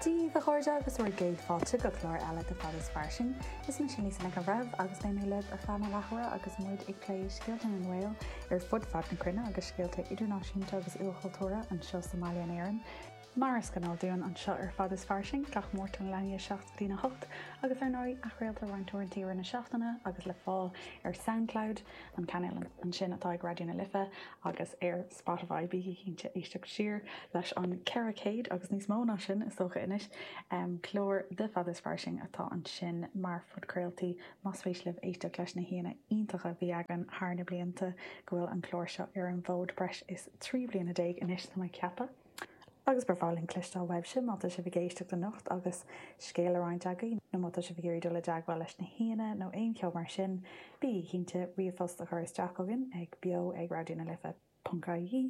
Dia dhaoibh a chairde agus bhur gcéad fáilte go clár eile de Fad is Fairsing. Is mise Lisa Nic an Bhreithimh agus beidh mé libh ar feadh na leathuaire agus muid ag plé scéalta na nGael ar fud fad na cruinne agus scéalta idirnáisiúnta agus ilchultúrtha anseo sa mbaile in Éirinn. Mar is gnáth dúinn anseo ar Fad is Fairsing gach Máirt ar na línte 7 go dtí 8 agus ar ndóigh athchraoltar roinnt uaireanta i rith na seachtaine agus le fáil ar Soundcloud, an cainéal ansin atá ag Raidió na Life, agus ar Spotify, bígí cinnte éisteacht siar leis an 400, agus níos mó ná sin is dócha anois, clár de Fad is Fairsing atá ansin mar phodchraoltaí más spéis libh éisteacht leis na haíonna iontacha a bhí againn thar na blianta go bhfuil an clár seo ar an bhfód breis is trí bliana déag anois tá mé ag ceapadh. agus ba bhreá linn cloisteáil uaibhse má tá sibh ag éisteacht anocht agus scéal le roinnt agaibh nó má tá sibh ag iarraidh dul i dteagmháil leis na haíonna nó aon cheo mar sin, bígí cinnte ríomhphost a chur isteach chugainn ag beo ag raidionalife.ie,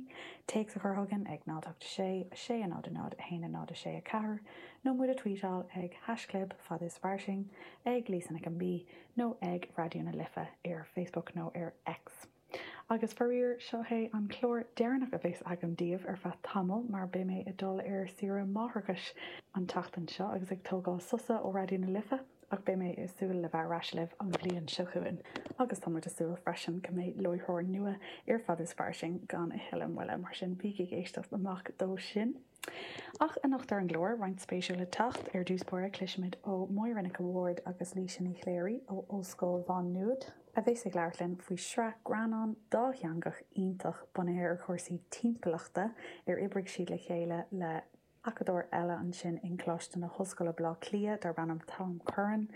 téacs a chur chugainn ag 086 600 10 0 6 4 nó muid a tvuíteáil ag haisclib Fad is Fairsing, ag Lisa Nic an Mhí nó ag Raidió na Life ar Facebook nó ar X. Agus faraor, seo é an clár deireanach a bheas agam daoibh ar feadh tamaill mar beidh mé ag dul ar saoire máithreachais an tseachtain seo agus ag tógáil sosa ó Raidió na Life ach beidh mé ag súil le bheith ar ais libh an bhliain seo chugainn agus tá muid ag súil freisin go mbeidh láithreoir nua ar Fad is Fairsing gan a thuilleadh moille, mar sin bígí ag éisteacht amach dó sin. Ach anocht ar an gclár, roinnt spéisiúil le teacht. Ar dtús báire, cloisfimid ó Mháire Nic a' Bhaird agus Laoise Ní Chléirigh ó Ollscoil Mhá Nuad a bheas ag labhairt linn faoi sraith greannán dátheangach iontach bunaithe ar chúrsaí timpeallachta ar oibrigh siad le chéile le acadóir eile ansin i gColáiste na hOllscoile Baile Átha Cliath darb ainm Tom Curran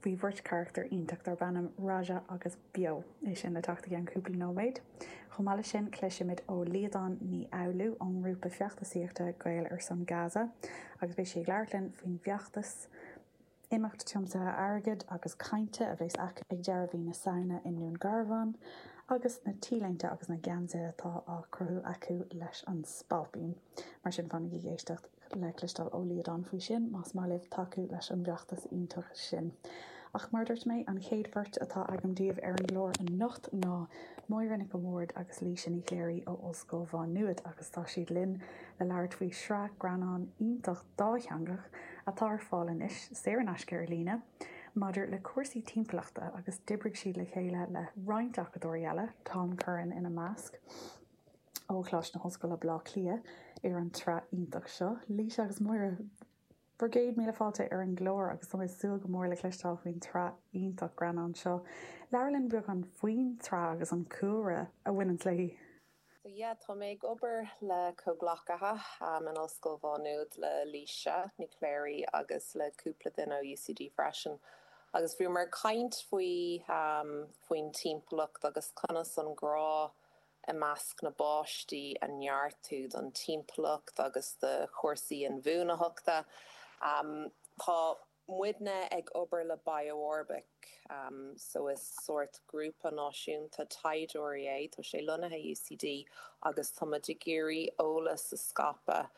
faoi bheirt charachtar iontach darb ainm Raja agus Beo. É sin le teacht i gceann cúpla nóiméad. Chomh maith leis sin, cloisfimid ó Liadán Ní Fhoghlú ón ngrúpa feachtasaíochta Gaeil ar son Gaza agus beidh sí ag labhairt linn faoin bhfeachtas, imeacht tiomsaithe airgid agus cainte a bheas acu ag deireadh mhí na Samhna i nDún Garbhán agus na T-léinte agus na geansaithe atá á gcruthú acu leis an Spailpín. Mar sin, fanaigí ag éisteacht. le cloisteáil ó Liadán faoi sin, más maith libh tacú leis an bhfeachtas iontach sin. Ach mar a dúirt mé, an chéad bheirt atá agam daoibh ar an gclár anocht ná Máire Nic an Bhaird agus Laoise Ní Chléirigh ó Ollscoil Mhá Nuad agus tá siad linn le labhairt faoi shraith greannán iontach dátheangach atá ar fáil anois saor in aisce ar líne maidir le cúrsaí timpeallachta agus d'oibrigh siad le chéile le roinnt acadóirí eile, Tom Curran ina measc. ó Choláiste na hOllscoile Bleá Cliath ar an tsraith iontach seo. Laoise agus Máire, bhur gcéad míle fáilte ar an gclár agus tá mé ag súil go mór le cloisteáil faoin tsraith iontach greannán seo. Labhair linn beagán faoin tsraith agus an cúlra a bhaineanns léi. So yeah, tá mé ag obair le comhghleacaithe in Ollscoil Mhá Nuad, le Laoise Ní Chléirigh agus le cúpla duine ó UCD freisin, agus bhíomar ag caint faoi, faoin timpeallacht agus conas an grá, i measc na bpáistí a neartú don timpeallacht agus do chúrsaí inbhuanaitheachta. Tá muidne ag obair le BiOrbic so is sórt grúpa náisiúnta taighdeoirí é, tá sé lonnaithe UCD agus tá muid ag iarraidh eolas a scaipeadh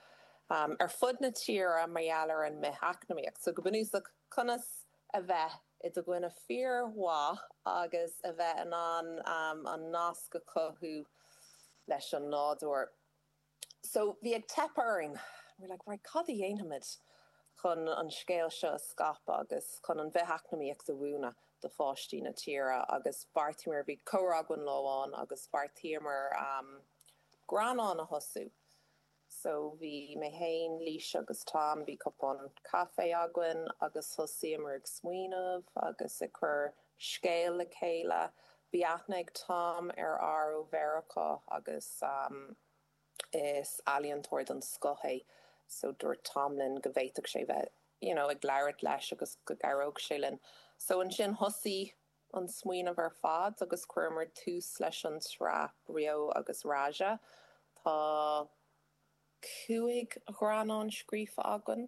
ar fud na tíre mar gheall ar an mbith-eacnamaíocht. So go bunúsach, conas a bheith i do dhuine fíormhaith agus a bheith in ann an nasc a chothú leis an nádúr. So, bhí ag teip orainn. We were like, right, cad a dhéanfaimid chun an scéal seo a scaipeadh agus chun an bhith-eacnamaíocht a mhúineadh do pháistí na tíre agus bheartaíomar, bhí comhrá againn lá amháin agus bheartaíomar greannán a thosú. So bhí mé féin, Laois agus Tom, bhí cupán caife againn agus thosaíomar ag smaoineamh agus ag cur scéil le chéile. Bhí aithne ag Tom ar fhear ó Mheiriceá agus is ealaíontóir den scoth é. So dúirt Tom linn go bhféadfadh sé bheith, you know, ag labhairt leis agus go gcabhródh sé linn. So ansin thosaigh. an smaoineamh ar fad agus chuireamar tús leis an tsraith Beo agus Raja. Tá cúig ghreannán scríofa againn,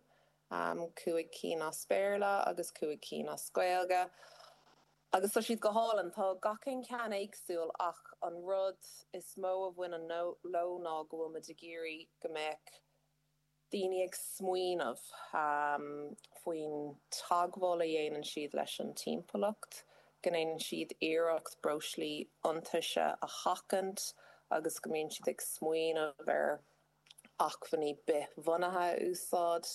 cúig cinn as Béarla agus cúig cinn as Gaeilge, agus tá siad go hálainn. Tá gach aon cheann éagsúil ach an rud is mó a bhaineann leo ná go bhfuil muid ag iarraidh go mbeadh daoine ag smaoineamh faoin teagmháil a dhéanann siad leis an timpeallacht, go ndéanann siad iarracht breoslí iontaise a sheachaint agus go mbíonn siad ag smaoineamh ar acmhainní bithbhunaithe a úsáid.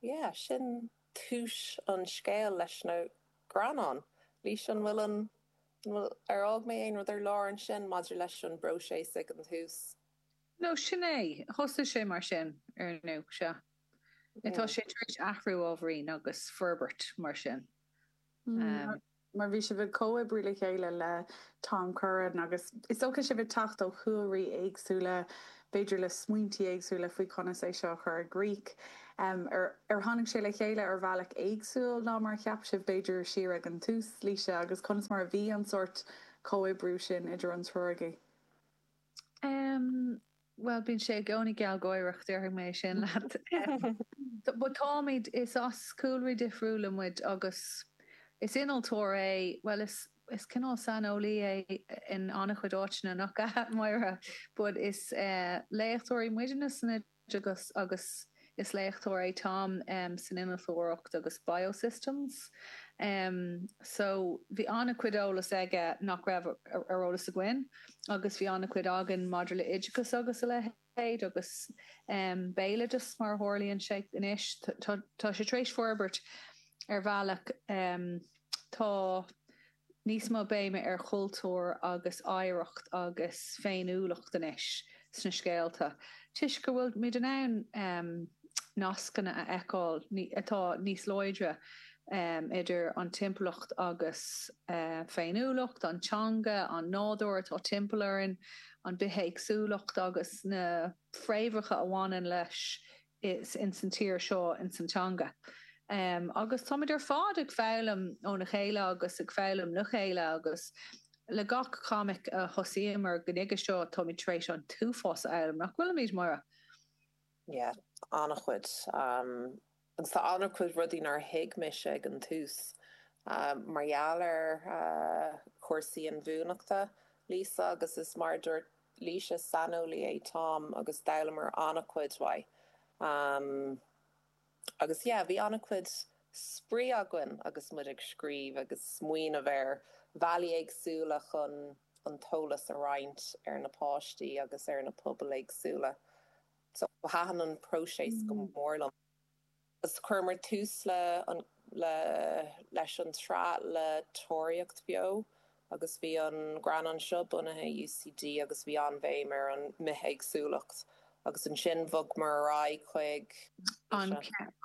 Yeah, sin tús an scéil leis na greannáin. Laois, an bhfuil, ar fhág mé aon rud ar lár ansin maidir leis an bpróiseas ag an tús? Nó sin é. Thosaigh sé mar sin, ar ndú, sea. Atá sé tar éis athrú ábhairín agus forbairt mar sin. Mar bhí sibh ag comhoibriú le chéile le Tom Curran agus is dócha sibh ag teacht ó chúlraí éagsúla, b'fhéidir le smaointí éagsúla faoi conas é seo a chur i gcrích. Ar tháinig sé le chéile ar bhealach éagsúil ná mar a cheap sibh, b'fhéidir, siar ag an tús, Laoise, agus conas mar a bhí an sórt comhoibriú sin idir an triúr agaibh? Bhuel, bíonn sé i gcónaí gealgháireach, déarfaidh mé sin leat. Táimid, is as cúlraí difriúla muid agus is innealtóir é, bhuel, is is cineál saineolaí é in an-chuid áiteanna, nach ea, Máire? But is léachtóirí muidne sna. teagasc agus is léachtóir é Tom san innealtóireacht agus biosystems. So bhí an-chuid eolas aige nach raibh ar eolas againn agus bhí an-chuid againn maidir le oideachas agus a leithéid agus béaloideas mar a tharlaíonn sé anois. Tá sé tar éis forbairt ar bhealach. Tá. níos mó béime ar chultúr agus oidhreacht agus féiniúlacht anois sna scéalta toisc go bhfuilmid in ann nascanna a fheiceáil atá níos láidre idir an timpeallacht agus féiniúlacht, an teanga, an nádúr atá timpeall orainn, an bithéagsúlacht agus na fréamhacha a bhaineann leis is ins an tír seo, ins an teanga. Agus táimid ar fad ag foghlaim óna chéile agus ag foghlaim le chéile agus le gach comic a thosaíomar go nuige seo táimid tar éis an t-uafás a fhoghlaim, nach bhfuilimid, Máire? Yeah, an-chuid. Agus tá an-chuid rudaí nár thuig mise ag an tús mar gheall ar chúrsaí inbhuanaitheachta, Laoise, agus is mar a dúirt. Laoise. Saineolaí é Tom agus d'fhoghlaimíomar an-chuid ó Tom agus yeah bhí an-chuid spraoi againn agus muid ag scríobh agus ag smaoineamh ar bhealaí éagsúla chun an t-eolas a roinnt ar na páistí agus ar na pobail éagsúla. So thaitin an próiseas go mór liom. agus chuireamar tús le an le leis an tsraith le Tóraíocht Bheo agus bhí an greannán seo bunaithe i UCD agus bhí an-bhéim ar an mbithéagsúlacht agus ansin bhogamar ar aghaidh chuig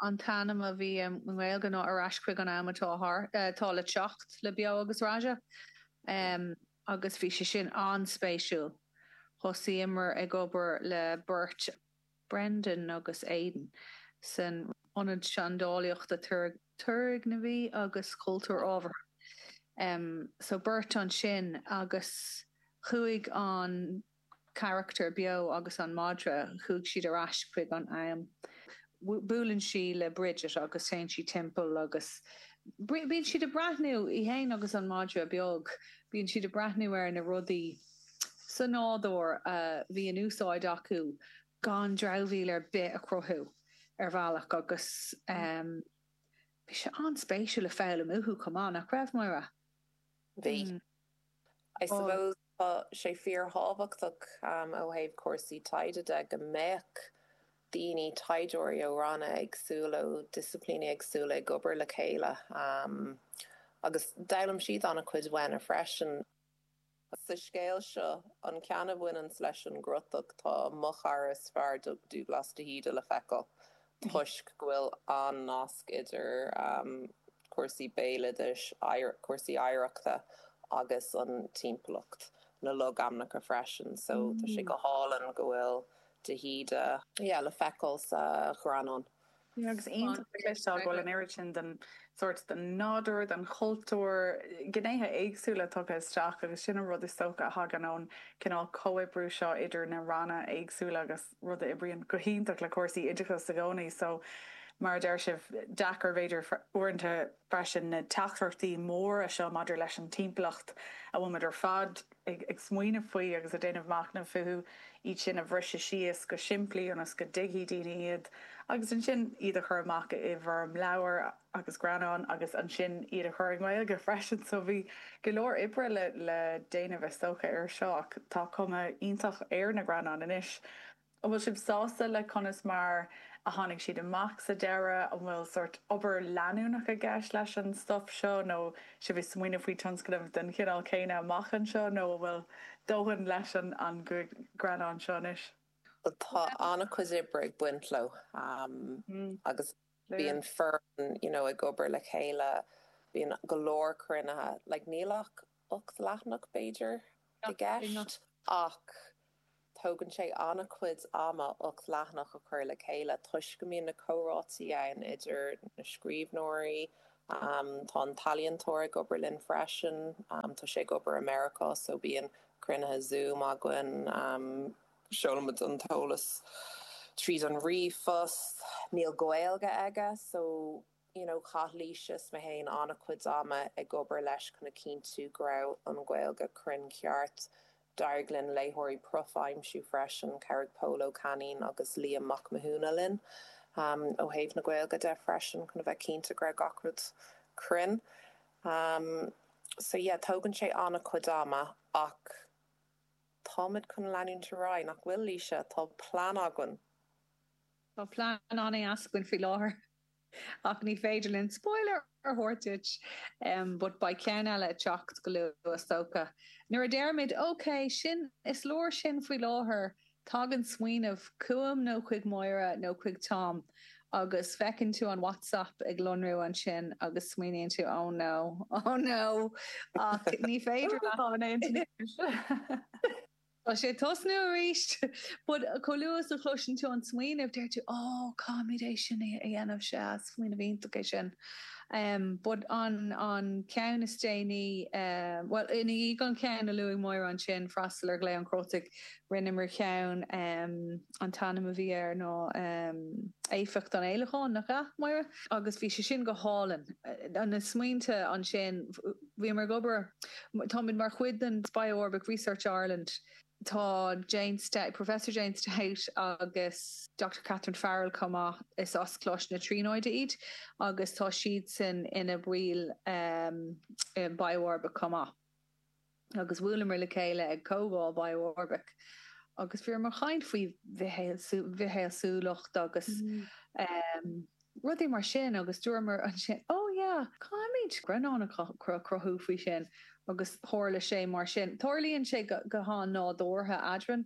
an t-ainm a bhí i nGaeilge ná Ar Ais Chuig an Am atá le Teacht le Beo agus Raja ehm agus bhí sé sin an-spéisiúil. Thosaíomar ag obair le beirt. Brendan agus Aidan san Ionad Seandálaíochta Turgnamhaí agus Cultúir Ábhartha. So beirt ansin agus chuaigh an carachtar beo agus an madra, chuaigh siad ar ais chuig an am. Buaileann sí le Bridget agus téann sí timpeall agus bíonn siad ag breathnú, í fhéin agus an madra beag, bíonn siad ag breathnú ar na rudaí, sa nádúr a bhí in úsáid acu gan dramhaíl ar bith a chruthú ar bhealach agus bhí sé an-spéisiúil le foghlaim uathu chomh maith, nach raibh, Máire? Bhí. I suppose tá sé fíorthábhachtach ó thaobh cúrsaí taighde de go mbeadh daoine, taighdeoirí ó ranna éagsúla, ó disciplíní éagsúla ag obair le chéile agus d'fhoghlaim siad an-chuid uainne freisin. Sa scéal seo, an ceann a bhaineanns leis an gcrotach, tá Mo Chara is Fearr, Dubhghlas de hÍde, le feiceáil toisc go bhfuil an-nasc idir cúrsaí béaloidis, cúrsaí oidhreachta agus an timpeallacht, na logainmneacha freisin, so tá sé go hálainn go bhfuil de hÍde le feiceáil sa ghreannán. Agus iontach le cloisteáil go bhfuil an oiread sin den sórt, den nádúr, den chultúr, gnéithe éagsúla tugtha isteach agus sin an rud is dócha a thagann ón gcineál comhoibriú seo idir na ranna éagsúla agus rud a oibríonn go hiontach le cúrsaí oideachais i gcónaí. So, mar a deir sibh, deacair b'fhéidir uaireanta, freisin na teachtaireachtaí móra seo maidir leis an timpeallacht a bhfuil muid ar fad ag smaoineamh faoi agus ag déanamh machnaimh fúthu, iad sin a bhriseadh síos go simplí ionas go dtuigfidh daoine iad agus ansin iad a chur amach i bhfoirm leabhair agus greannán agus ansin iad a chur i nGaeilge freisin. So bhí go leor oibre le déanamh is dócha air seo ach tá cuma iontach ar na greannáin anois. An bhfuil sibh sásta le conas mar a tháinig siad amach sa deireadh? An bhfuil sórt obair leanúnach i gceist leis an stuif seo nó sibh ag smaoineamh faoi tionscnamh den chineál céanna amach anseo nó an bhfuil dóthain leis an gcúig ghreannán seo anois? Bhuel, tá an-chuid oibre ag baint leo agus bíonn foireann you know ag obair le chéile, bíonn go leor cruinnithe, like níl ach, ocht leathanach, b'fhéidir, i gceist, ach tógann sé an-chuid ama ocht leathanach a chur le chéile toisc go mbíonn na comhráití ann idir na scríbhneoirí, tá an t-ealaíontóir ag obair linn freisin, tá sé ag obair i Meiriceá so bíonn cruinnithe Zoom againn, seolaimid an t-eolas tríd an ríomhphost, níl Gaeilge aige so you know chaith Laoise is mé féin an-chuid ama ag obair leis chun a chinntiú go raibh an Ghaeilge cruinn ceart. D'éirigh linn léitheoirí prof a aimsiú freisin, chabhraigh Pól Ó Cainín agus Liam Mac Mathúna linn ó thaobh na Gaeilge de freisin chun a bheith cinnte go raibh gach rud cruinn. So yeah tógann sé an-chuid ama ach táimid chun leanúint ar aghaidh, nach bhfuil, Laoise? Tá plean againn. Tá plean againn faoi láthair. Ach ní féidir linn spoiler a thabhairt duit but beidh ceann eile ag teacht go luath is dócha. Nuair a deirimid ok, sin, is leor sin faoi láthair, tagann smaoineamh chugam nó chuig Máire nó chuig Tom agus feiceann tú an WhatsApp ag lonrú ansin agus smaoiníonn tú oh no, oh no ach ní féidir leat. Tá sé ag tosnú arís. But chomh luath is a chloiseann tú an smaoineamh, deir tú, Ó, caithfimid é sin a dhéanamh, sea, smaoineamh iontach é sin. But an ceann is déanaí, bhuel, ina dhiaidh an ceann a luaigh Máire ansin, Freastal ar Ghlao an Chrótaigh, rinneamar ceann, an t-ainm a bhí air ná Éifeacht an Fhéileacáin, nach ea, Máire? Agus bhí sé sin go hálainn. Na smaointe ansin. Bhíomar ag obair. Táimid mar chuid den BiOrbic Research Ireland. Tá Jane Stout, Professor Jane Stout agus Doctor Catherine Farrell chomh maith, is as Coláiste na Tríonóide iad agus tá siadsan ina baill i BiOrbic chomh maith. Agus bhuaileamar le chéile ag comhdháil BiOrbic agus bhíomar ag caint faoi bhithéagsúlacht agus rudaí mar sin agus dúramar ansin 'Ó yeah, caithfimid greannán a chruthú faoi sin' agus tharla sé mar sin. Tarlaíonn sé go han-nádúrtha eadrainn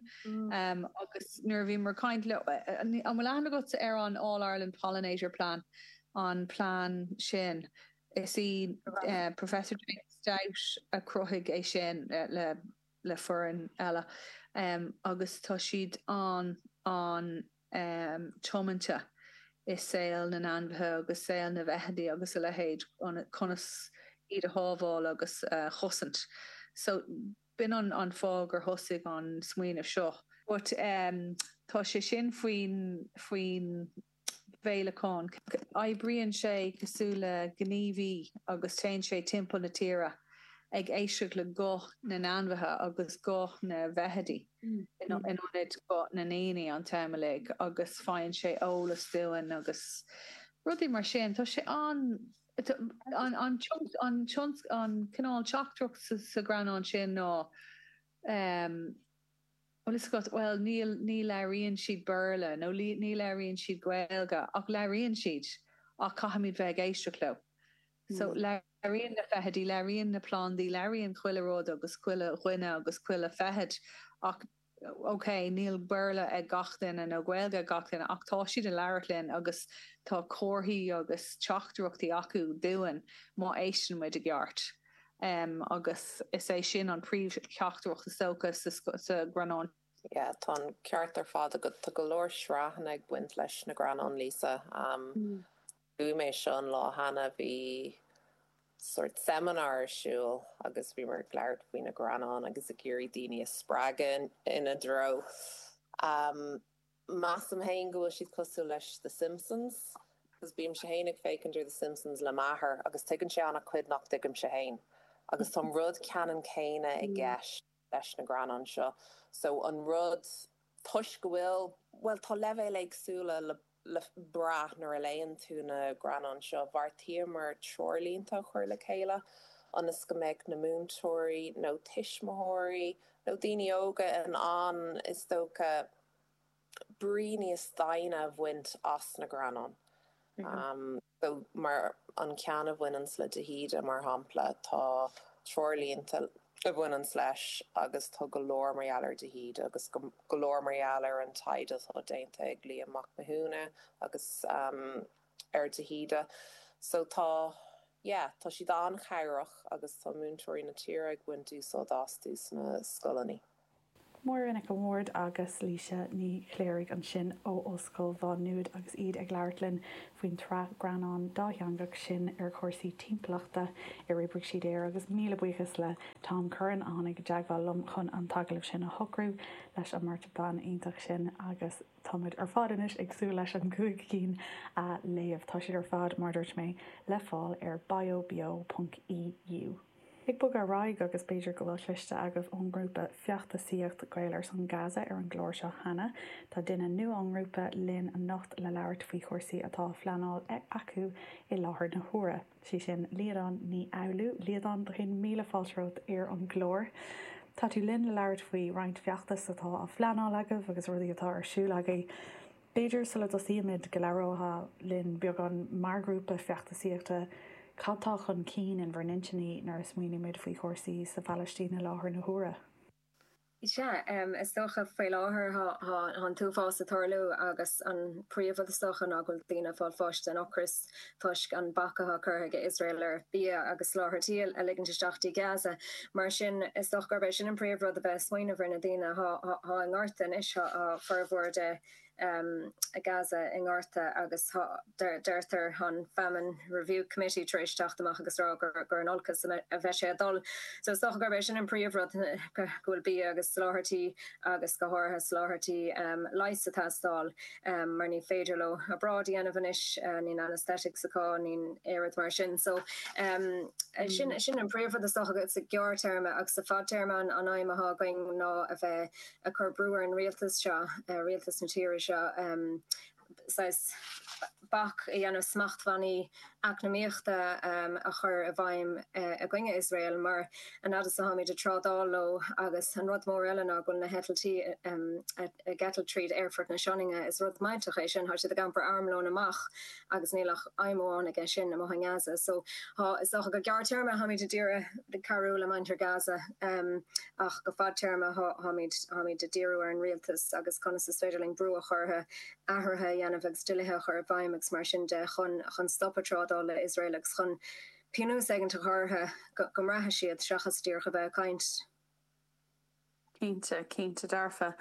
agus nuair a bhíomar ag caint leo, 'An bhfuil aithne agat ar an All Ireland Pollinator Plan, an plean sin? Is í Professor Jane Stout a chruthaigh é sin le foireann eile agus tá siad an- tiomanta i saol na n-ainmhithe agus saol na bhfeithidí agus a leithéid, conas iad a shábháil agus a chosaint. So, b'in an fáth gur thosaigh an smaoineamh seo. But tá sé sin faoin bhféileacán. Oibríonn sé cosúil le gníomhaí agus téann sé timpeall na tíre ag éisteacht le guth na n-ainmhithe agus guth na bhfeithidí. in ionad guth na ndaoine an t-am uilig agus faigheann sé eolas dúinn agus rudaí mar sin. Tá sé an, an cineál teachtaireacht sa ghreannán sin ná em tá a fhios agat, bhuel níl, ní labhraíonn siad Béarla nó ní labhraíonn siad Gaeilge ach labhraíonn siad ach caithfimid bheith ag éisteacht leo. So, labhraíonn na feithidí, labhraíonn na plandaí, labhraíonn chuile rud agus chuile dhuine agus chuile feithid ach, ok, níl Béarla ag gach duine nó Gaeilge ag gach duine ach tá siad ag labhairt linn agus tá comharthaí agus teachtaireachtaí acu dúinn má éisteann muid i gceart. Em, agus is é sin an príomh-theachtaireacht is dócha sa ghreannán. Yeah, tá an ceart ar fad agat. Tá go leor sraitheanna ag baint leis na greannáin, Laoise. Em, Luaigh mé seo an lá cheana, bhí sort seimineár ar siúl agus bhíomar ag labhairt faoi na greannáin agus ag iarraidh daoine a spreagadh ina dtreo. Measaim féin go bhfuil siad cosúil le The Simpsons, agus bímse féin ag féachaint ar The Simpsons le m'athair agus tuigeann sé an-chuid nach dtuigimse féin, agus tá an rud ceannann céanna i gceist. leis na greannáin seo so an rud toisc go bhfuil, bhuel, tá leibhéil éagsúla le brath nuair a léann tú na greannáin seo. Bheartaíomar treoirlínte a chur le chéile ionas go mbeadh na múinteoirí nó tuismitheoirí nó daoine óga in ann, is dócha, brí níos doimhne a bhaint as na greannáin. So, mar an ceann a bhaineanns le de hÍde, mar shampla, tá treoirlínte a bhaineanns leis agus tá go leor mar gheall ar de hÍde agus go leor mar gheall ar an taighde atá déanta ag Liam Mac Mathúna agus em ar de hÍde. So, tá, yeah, tá siad an-chabhrach agus tá múinteoirí na tíre ag baint úsáid astu sna scoileanna. Máire Nic an Bhaird agus Laoise Ní Chléirigh ansin ó Ollscoil Mhá Nuad agus iad ag labhairt linn faoin tsraith greannán dátheangach sin ar chúrsaí timpeallachta ar oibrigh siad air agus míle buíochas le Tom Curran a tháinig i dteagmháil liom chun an t-agallamh sin a shocrú leis an mbeirt bhan iontach sin agus tá muid ar fad anois ag súil leis an gcúig cinn a léamh. Tá siad ar fad, mar a dúirt mé, le fáil ar biobeo.eu. Ag bogadh ar aghaidh, agus b'fhéidir go bhfuil cloiste agaibh ón ngrúpa feachtasaíocht Gaeil ar son Gaza ar an gclár seo cheana, tá duine nua ón ngrúpa linn anocht le labhairt faoi chúrsaí atá á phleanáil acu i láthair na huaire. Is í sin Liadán Ní Fhoghlú. Liadán, go céad míle fáilte romhat ar an gclár. Tá tú linn le labhairt faoi roinnt feachtas atá á phleanáil agaibh agus rudaí atá ar siúl agaibh. B'fhéidir, sula dtosaímid, go labhróidh linn beagán mar ghrúpa feachtasaíochta cad tá chun cinn in bhur n-intinní nuair a smaoinímid faoi chúrsaí sa Phalaistín i láthair na huaire. Sea, is dócha, faoi láthair tá an t-uafás ag tarlú agus an príomh-rud is dócha ná go bhfuil daoine ag fáil bháis den ocras. toisc an bac atá curtha ag Iosrael ar bhia agus soláthairtí a ligint isteach go dtí Gaza. Mar sin, is dócha gurb é sin an príomh rud a bheith ag smaoineamh ar na daoine atá atá i ngorta anois. Tá formhór de Gaza i ngorta agus tá, deirtear, an Famine Review Committee tar éis teacht amach agus rá gur gur in olcas a bheidh sé ag dul. So is dócha gurb é sin an príomh rud go bhfuil bia agus soláthairtí agus go háirithe soláthairtí leighis ag teastáil. mar ní féidir leo obráid a dhéanamh anois, níl anaesthetics acu, níl aon rud mar sin. So sin sin an príomh rud is dócha agat sa gearr téarma agus sa fad téarma an aidhm atá againn ná a bheith ag cur brú ar an rialtas seo, rialtas na tíre seo, saghas bac a dhéanamh smachtbhannaí eacnamaíochta a chur i bhfeidhm i gcoinne Iosrael, mar an fhad is atáimid ag trádáil leo, agus an rud mór eile ná go bhfuil na heitiltí ag eitilt tríd aerfort na Sionainne. Is rud bunúsach é sin, tá siad ag iompar armlóin amach agus níl ach aidhm amháin aige sin, amuigh i nGaza. So tá, is dócha go gearrtéarma táimid ag iarraidh cabhrú le muintir Gaza ach go fadtéarma táimid ag díriú ar an rialtas agus conas is féidir linn brú a chur orthu. athruithe a dhéanamh agus dlíthe a chur i bhfeidhm agus mar sin de chun chun stopadh trádáil le Iosrael agus chun pionós éigint a chur orthu go go mbraithfidh siad seachas díreach a bheith ag caint. Cinnte, cinnte, dearfa.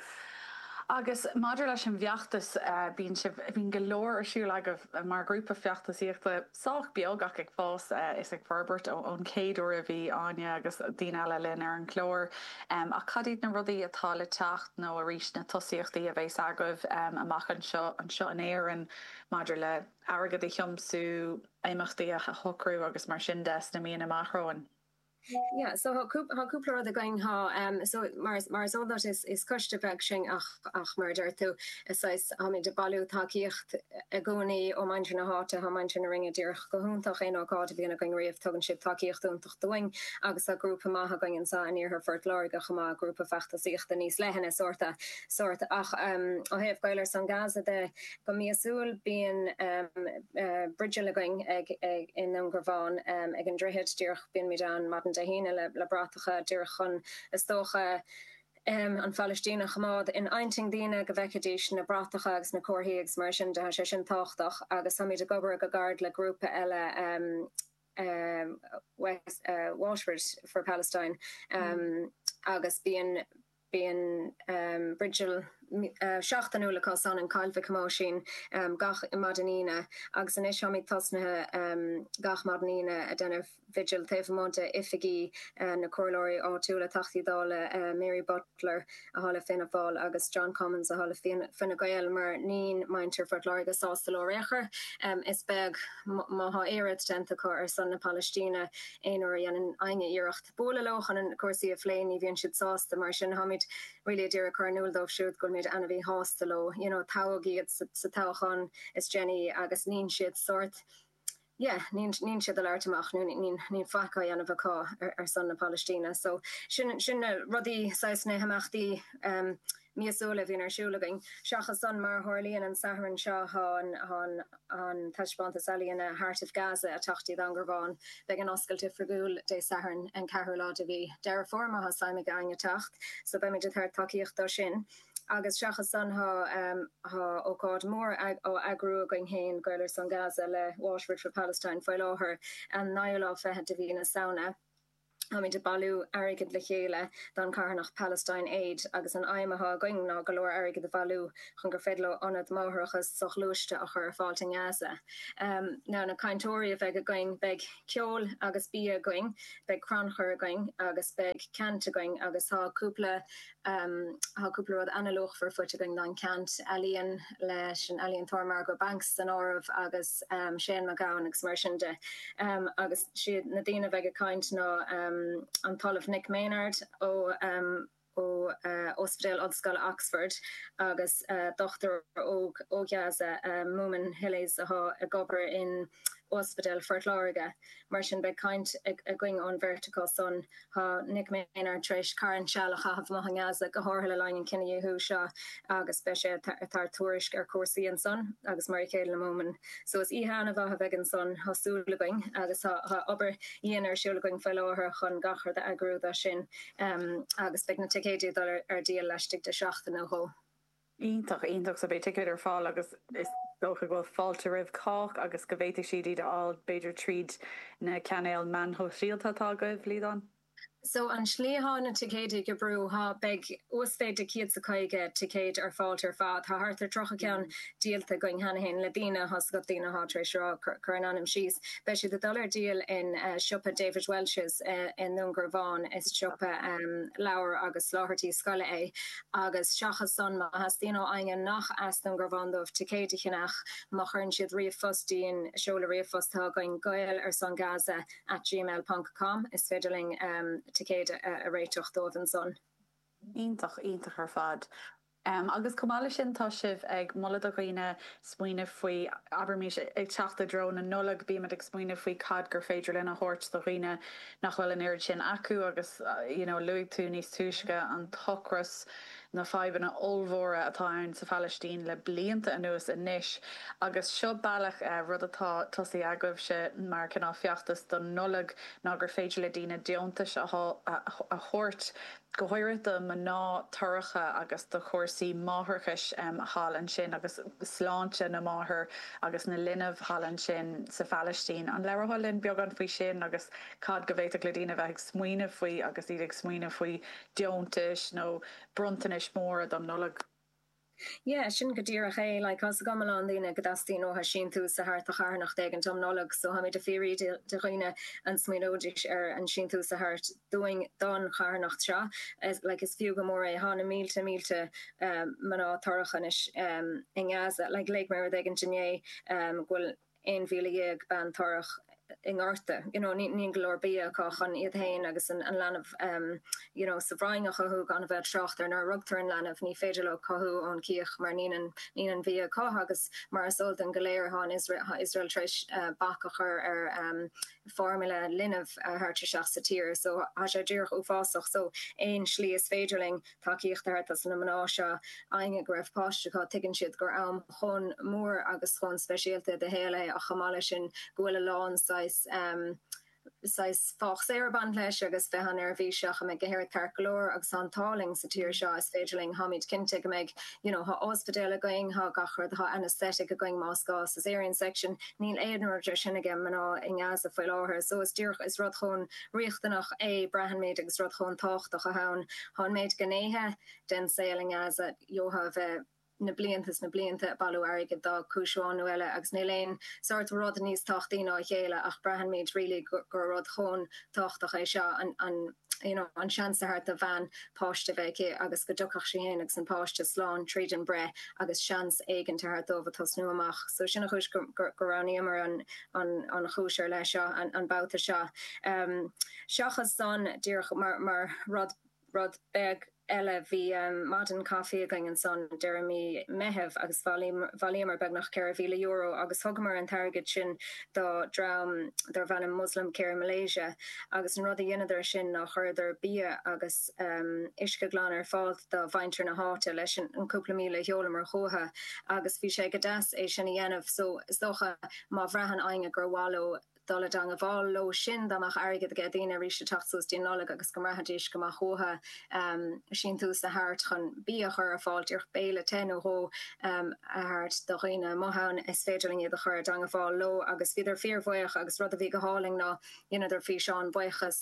Agus maidir leis an bhfeachtas, bíonn sibh, bíonn go leor ar siúl agaibh mar ghrúpa feachtasaíochta. sách beag ach ag fás is ag forbairt ón chéad uair a bhí Áine agus daoine eile linn ar an gclár. Ach cad iad na rudaí atá le teacht nó, arís, na tosaíochtaí a bheas agaibh amach anseo anseo in Éirinn maidir le hairgead a thiomsú, imeachtaí a shocrú agus mar sin de sna míonna amach romhainn? Yeah, so tá cúpla, tá cúpla rud againn, tá, so mar, mar is eol duit is, is coiste beag sinn ach, ach mar a deir tú, is saghas, táimid ag bailiú tacaíocht i gcónaí ó muintir na háite, tá muintir na Rinne díreach go hiontach, aon ócáid a bhíonn againn riamh tugann siad tacaíocht iontach dúinn agus tá grúpa maith againn anseo in iarthar Phort Láirge chomh maith, grúpa feachtasaíochta níos leithne sórt a, sórt ach ó thaobh Gaeil ar son Gaza de, Go míosúil bíonn bigil againn i nDúngarbhán ag an droichead díreach, bímid ann maidin Dé hAoine le bratacha díreach chun is dócha an Phailistín a choimeád in intinn daoine, go bhfeicfidís na bratacha agus na comharthaí agus mar sin de, tá sé sin tábhachtach. Agus táimid ag obair go gairid le grúpa eile West, Waterford for Palestine agus bíonn, Bíonn vigil seachtainiúil acu san in Coill Mhic Thomáisín gach maidin Aoine agus anois táimid tosnaithe gach maidin Aoine ag déanamh vigil taobh amuigh de oifigí na comhairleoirí áitiúla, Teachtaí Dála Mary Butler atá le Fianna Fáil agus John Cummins atá le Fine Gael mar nín muintir Phort Láirge sásta leo ar aon chor. Is beag má thá aon rud déanta acu ar son na Palaistíne aon uair a dhéanann éinne iarracht. bualadh leo chun cúrsaí a phlé, ní bhíonn siad sásta. Mar sin, táimid really ag iarraidh cur in iúl dóibh siúd go bhfuilimid an-mhíshásta leo, you know, toghadh iad sa toghachán is déanaí agus nín siad sórt yeah, nín, nín siad ag labhairt amach nó nín, nín faic á dhéanamh acu ar son na Palaistíne. So, sin, sin na rudaí, saghas na himeachtaí, eh, míosúil a bhíonn ar siúl againn. Seachas san, mar a tharlaíonn an Satharn seo, tá an taispeántas ealaíne 'Heart of Gaza' ag teacht go dtí Dún Garbhán beidh an oscailt oifigiúil Dé Sathairn, an 4ú lá de mhí Dheireadh Fómhair, má thosaímid againn ag teacht, so beimid ag tabhairt tacaíocht dó sin. Agus seachas san, tá ócáid mhór á eagrú againn féin, Gaeil ar son Gaza, le Waterford for Palestine faoi láthair, an 9ú lá fichead de mhí na Samhna. Táimid ag bailiú airgid le chéile don charthanacht Palestine Aid agus an aidhm atá againn ná go leor airgid a bhailiú chun gur féidir leo ionad máithreachas soghluaiste a chur ar fáilt i nGaza. Ar na cainteoirí a bheidh againn, beidh ceol agus bia againn, beidh crannchur againn agus beidh ceant againn agus tá cúpla Tá cúpla rud an-luachmhar faighte againn don ceant ealaíon leis an ealaíontóir Margot Banks san áireamh agus Shane MacGowan agus mar sin de. Agus siad na daoine a bheidh ag caint ná an tOllamh Nick Maynard ó Ospidéal Ollscoile Oxford agus dochtúir ó Ghaza, Moomin Hilles, atá ag obair in Ospidéal Phort Láirge. Mar sin, beidh caint againn ón bheirt acu san. Tá Nick Maynard tar éis carn seal a chaitheamh amuigh i nGaza, go háirithe le linn an chinedhíothú seo, agus beidh sé ag tabhairt tuairisc ar chúrsaí ansan, agus mar a chéile le Moomin. So is oíche an-mhaith a bheidh ansan, tá súil againn, agus tá obair dhian ar siúl againn faoi láthair chun gach rud a eagrú dó sin, agus beidh na ticéidí ag dul ar díol laistigh de sheachtain nó dhó. iontach, iontach, so beidh ticéid ar fáil agus is dócha go bhfuil fáilte roimh chách agus go bhféadfaidh siad iad a fháil b'fhéidir tríd na cainéil meán shóisialta atá agaibh, Liadán? So an slí atá na ticéid ag oibriú, tá, beidh uasmhéid de chéad 's caoga ticéid ar fáilt ar fad, tá thart ar tríocha ceann díolta againn cheana féin le daoine tá's agat, daoine atá tar éis rá, cur a n-ainm síos. Beidh siad ag dul ar díol in siopa David Walsh's i nDún Garbhán, is siopa leabhar agus soláthairtí scoile é. agus seachas san, má theastaíonn ó éinne nach as Dún Garbhán dóibh ticéid a cheannach má chuireann siad ríomhphost dúinn, seoladh ríomhphost atá againn, gaeilarsongaza at gmail ponc com, is féidir linn ticéid a réiteach dóibh ansan. Iontach, iontach ar fad. Agus chomh maith leis sin, tá sibh ag moladh do dhaoine smaoineamh faoi, abraimis, ag teacht i dtreo na Nollag, bímid ag smaoineamh faoi cad gur féidir linn a thabhairt do dhaoine, nach bhfuil an oiread sin acu agus you know luaigh tú níos túisce an t-ocras, na fadhbanna ollmhóra atá ann sa Phalaistín le blianta anuas anois agus seo bealach, rud atá tosaithe agaibhse mar cineál feachtas don Nollaig ná gur féidir le daoine deontais a thabhairt go háirithe do mhná torracha agus do chúrsaí máithreachais thall ansin agus sláinte na máthar agus na linbh thall ansin sa Phalaistín. An labhrófá linn beagán faoi sin agus cad go bhféadfadh le daoine a bheith ag smaoineamh faoi agus iad ag smaoineamh faoi deontais nó bronntanais móra don Nollaig? Yeah, sin go díreach é. Like, tá 's agam a lán daoine go dteastaíonn uathu síntiús a thabhairt do charthanacht éigint um Nollaig, so tháimid a' fiafraí de dhaoine an smaoineoidís ar an síntiús a thabhairt dúinn don charthanacht seo. Like, is fiú go mór é. Thá na mílte mílte mná torrach anois i nGaza. Like, léigh mé rud éigint inné go bhfuil. 11,000 bean torrach i ngorta you know níl go leor bia acu chun iad féin agus an leanbh ehm you know sa bhroinn a chothú gan a bheith ag trácht ar nuair a rugtar an leanbh ní féidir leo cothú ón chíoch mar níl aon níl aon bhia acu agus mar is eol dúinn go léir thá an Iosrael thá an Iosrael tar éis bac a chur ar ehm formula linbh a thabhairt isteach sa tír so tá sé díreach uafásach so aon slí is féidir linn tacaíocht a thabhairt dos na mná seo. Éinne go raibh páiste acu, tuigeann siad gur am chomh mór agus chomh speisialta i do shaol é ach chomh maith leis sin go bhfuil a lán saghas saghas faitíos ag baint leis agus bheith an-neirbhíseach an mbeidh gach aon rud ceart go leor agus tá an t-ádh linn sa tír seo is féidir linn tháimid cinnte go mbeidh you know thá ospidéal againn thá gach rud thá anaesthetic againn más gá sa cesarean section níl aon rud de sin aige mná i nGaza faoi láthair so is díreach is rud chomh riachtanach é. Braitheann muid agus rud chomh tábhachtach athá ann. Tá an méid gnéithe den saol i nGaza, gheofá a bheith na blianta is na blianta, bailiú airgid do chúis amháin nó eile agus níl aon sórt rud níos tábhachtaí ná a chéile ach braitheann muid really gur rud chomh tábhachtach é seo, an an you know an seans a thabhairt do bhean páiste a bheith aici agus go dtiocfadh sí féin agus an páiste slán tríd an breith agus seans éigin a thabhairt dóibh ag tosnú amach. So sin an chúis go go roghnaíomar an an chúis ar leith seo an babhta seo. Seachas san, díreach mar rud beag eile, bhí maidin chaifí againn ansan deireadh mí Meitheamh agus bhailíomar beagnach €4,000 agus thugamar an t-airgead sin do dream darb ainm Muslim Care Malaysia agus an rud a dheineadar sin ná chuireadar bia agus bheadh uisce glan ar fáil do mhuintir na háite leis an cúpla míle a sheolamar chucu agus bhí sé go deas é sin a dhéanamh so is dócha má bhraitheann éinne gur mhaith leo dul i dteangmháil leo sin dá mbeadh airgead aige daoine arís ag teacht suas go dtí an Nollaig agus go mbraithfidís go mbeadh uathu síntiús a thabhairt chun bia a chur ar fáil díreach béile te nó dhó a thabhairt do dhaoine amuigh ann is féidir linn iad a chur i dteangmháil leo agus bhíodar fíorbhuíoch agus rud a bhí go hálainn ná dheineadar físeáin bhuíochais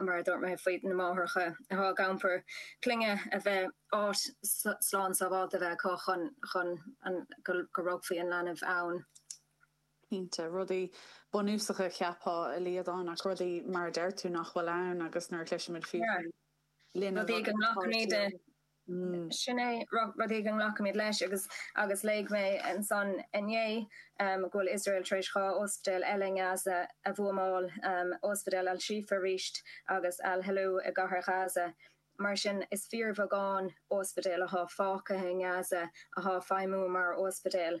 mar a dúirt mé faoi na máithreacha athá ag iompar clainne a bheith áit slán sábháilte a bheith acu chun chun go rugfaí an leanbh ann. cinnte. Rudaí bunúsacha, cheapfá, a Liadáin, ach rudaí, mar a deir tú, nach bhfuil ann agus nuair a chloisimid fiú faoi, linn a bhfuil an páirtí ann. Sin é rud éigin a nglacaimid leis agus agus léigh mé ansan inné go bhfuil Iosrael tar éis dhá ospidéal eile i nGaza a bhuamáil, ospidéal Al-Shifa arís agus Al-Helou i gCathair Ghaza. Mar sin is fíorbheagán ospidéal atá fágtha i nGaza atá ag feidhmiú mar ospidéal.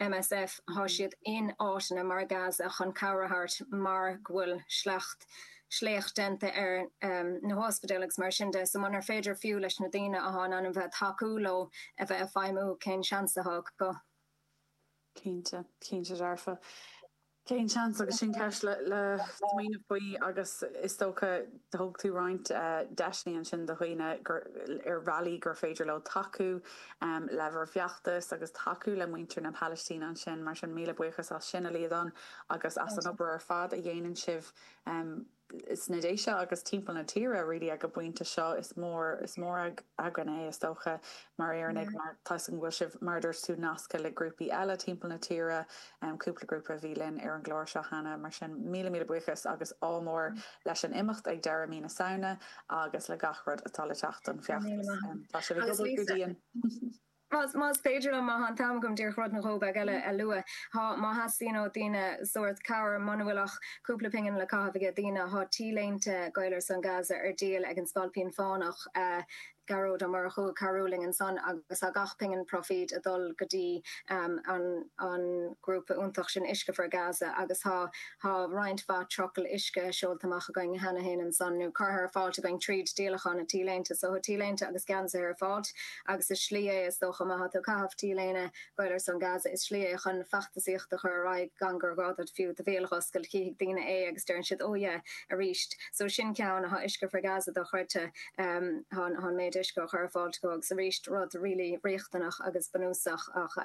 MSF, Thá siad in áiteanna mar Gaza chun cabhair a thabhairt mar go bhfuil sleacht sléacht déanta ar na hospidéil agus mar sin de. So munar féidir fiú leis na daoine athá in ainm bheith tacú leo a bheith ag feidhmiú cén seans atá acu? Cinnte, cinnte dearfa. Cén seans agus sin ceist le smaoineamh faoi agus is dócha thug tú roinnt deiseanna ansin do dhaoine ar bhealaí gur féidir leo tacú le bhur bhfeachtas agus tacú le muintir na Palaistíne ansin mar sin míle buíochas as sin, a Liadán, agus as an obair ar fad a dhéanann sibh. sna Déise agus timpeall na tíre really ag an bpointe seo. Is mór, is mór againn é, is dócha, mar Éireannaigh, mar tá 'fhios agam go bhfuil sibh, mar a dúirt tú, nasctha le grúpaí eile timpeall na tíre, cúpla grúpa a bhí linn ar an gclár seo cheana, mar sin míle, míle buíochas agus ádh mór leis an imeacht ag deireadh mí na Samhna agus le gach rud atá le teacht don bhfeachtas. Tá sibh ag obair go dian! Más féidir liom, má tá an t-am agam, díreach rud nó dhó beag eile a lua. Má theastaíonn ó dhaoine sórt cabhair, muna bhfuil ach cúpla pingin le caitheamh aige daoine, tá T-léinte Gaeil ar son Gaza ar díol ag an Spailpín Fánach, Gearóid Ó Murchú, cabhrú linn ansan agus tá gach pingin proifíd ag dul go dtí an grúpa iontach sin Uisce for Gaza agus tá roinnt mhaith trucail uisce seolta amach againn cheana féin ansan, nó curtha ar fáilt againn tríd díolachán na T-léinte. So tá T-léinte agus geansaithe ar fáilt. agus is slí é, is dócha, má thá tú ag caitheamh t-léine Gaeil ar son Gaza, is slí é chun feachtasaíocht a chur ar aghaidh gan gur gá duit fiú do bhéal a dh'oscailt, chífidh daoine é agus deireann siad, oh yeah, arís. So sin ceann, athá Uisce for Gaza dochreidte, thá an méid uisce á chur ar fáilt acu agus arís rud really riachtanach agus bunúsach ach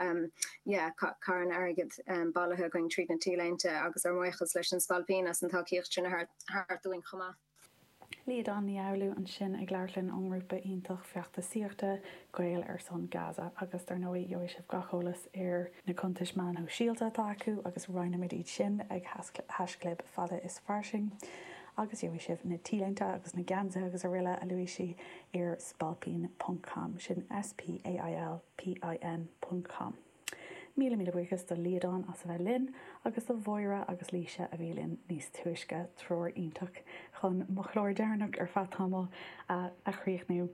yeah, carn airgid bailithe againn tríd na t-léinte agus ár mbuíochas leis an Spailpín as an tacaíocht sin a thabhairt dúinn chomh maith. Liadán Ní Fhoghlú ansin ag labhairt linn ón ngrúpa iontach feachtasaíochta, Gaeil ar son Gaza, agus dar ndóigh gheobhaidh sibh gach eolas ar na cuntais meán shóisialta atá acu agus roinnfimid iad sin ag haischlib fada is fairsing agus gheobhaidh sibh na T-léinte agus na geansaithe agus aroile a luaigh sí ar spailpín ponc com, sin S-P-A-I-L-P-I-N ponc com. Míle míle buíochas do Liadán as a bheith linn, agus do Mháire agus Laoise a bhí linn níos túisce, triúr iontach chun mo chlár deireanach ar feadh tamaill a chríochnú.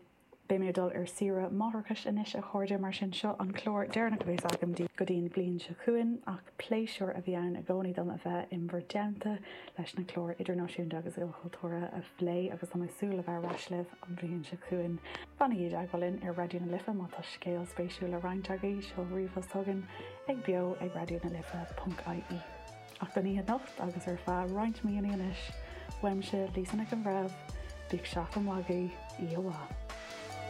Beidh mé ag dul ar saoire máithreachais anois a chairde, mar sin seo an clár deireanach a bhéas agam daoibh go dtí an bhliain seo chugainn, ach pléisiúr a bhí ann i gcónaí dom a bheith in bhur dteannta. leis na cláir idirnáisiúnta agus ilchultúrtha a phlé agus tá mé ag súil le bheith ar ais libh an bhliain seo chugainn. Fanaigí i dteagmháil linn ar Raidió na Life má tá scéal spéisiúil le roinnt agaibh, seol ríomhphost chugainn ag beo ag raidionalife.ie. Ach don oíche anocht agus ar feadh roinnt míonna anois, uaimse, Lisa Nic an Bhreithimh, bíodh seachtain mhaith agaibh, oíche mhaith.